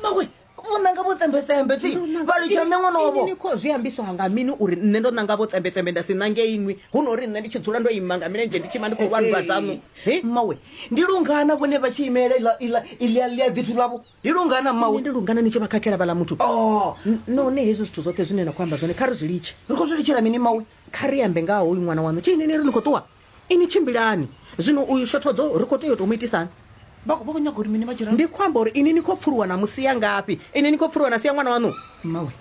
mawe vho nanga vho tsembetsembe ti vha litsha nṋe ṅwana wavho ni khou zwi ambiswa nga mini uri nṋe ndo nanga vho tsembetsembe nda si nange inwi hu no uri nṋe ndi tshi dzula ndo ima nga milenzhe ndi tshi ima ndi khou lwanndwa dzaṋu He? mawe ndi lungana vhone vha tshi imelela iḽa- iḽa- iḽa ḽia ḓithu ḽavho ndi lungana Nṋe mawe ndi lungana ni tshi vha khakhela vhala muthu Oh, N- none hezwi zwithu zwoṱhe zwine na khou amba zwone kha ri zwi litshe ri khou zwi litshela mini mawe kha ri ambe nga ha hoyu ṅwana waṋu tshi inini ri ni khou ṱuwa ini tshimbilani zwino uyu shothodzo ri khou tea u tou mu itisani vha khou nyaga uri mini vha tshi ndi khou amba uri ini ni khou pfuluwa na musi ya ngafhi ini ni khou pfuluwa na sia ṅwana waṋu mmawe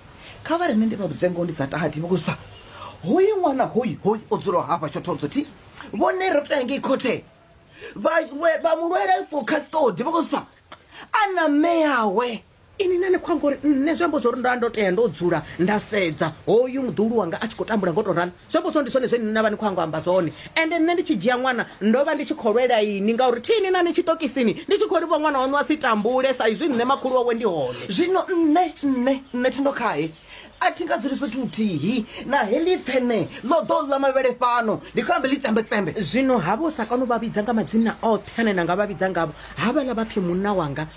kha vha rine ndi vha vhudze ngoho ndi sa tati vhukuzwa hoyu ṅwana hoyu hoyu o dzulaho hafha shothodzo thi vhone ro tea ngei khothe vha mulwele for custody vhukuzwa a na mme yawe ini nane khou amba uri nṋe zwi amba zwa uri nda ndo tea ndo dzula nda sedza hoyu muḓulu wanga a tshi khou tambula ngo tou ralo zwi amba zwa ndi zwone zwine nṋe vha ni khou ango amba zwone ende nṋe ndi tshi dzhia ṅwana ndo vha ndi tshi khou lwela ini ngauri thini na ni tshiṱokisini ndi tshi khou livha ṅwana waṋu a si tambule sa izwi nṋe makhulu wawe ndi hone zwino nṋe nṋe nṋe thindo khae a thi nga dzuli fhethu huthihi na heḽi pfene ḽo ḓo ḽa mavhele fhano ndi khou ambe ḽi tsembetsembe zwino havho sa kano vha vhidza nga madzina oṱhe ane na nga vha vhidza ngavho havhaḽa vha pfhi munna wanga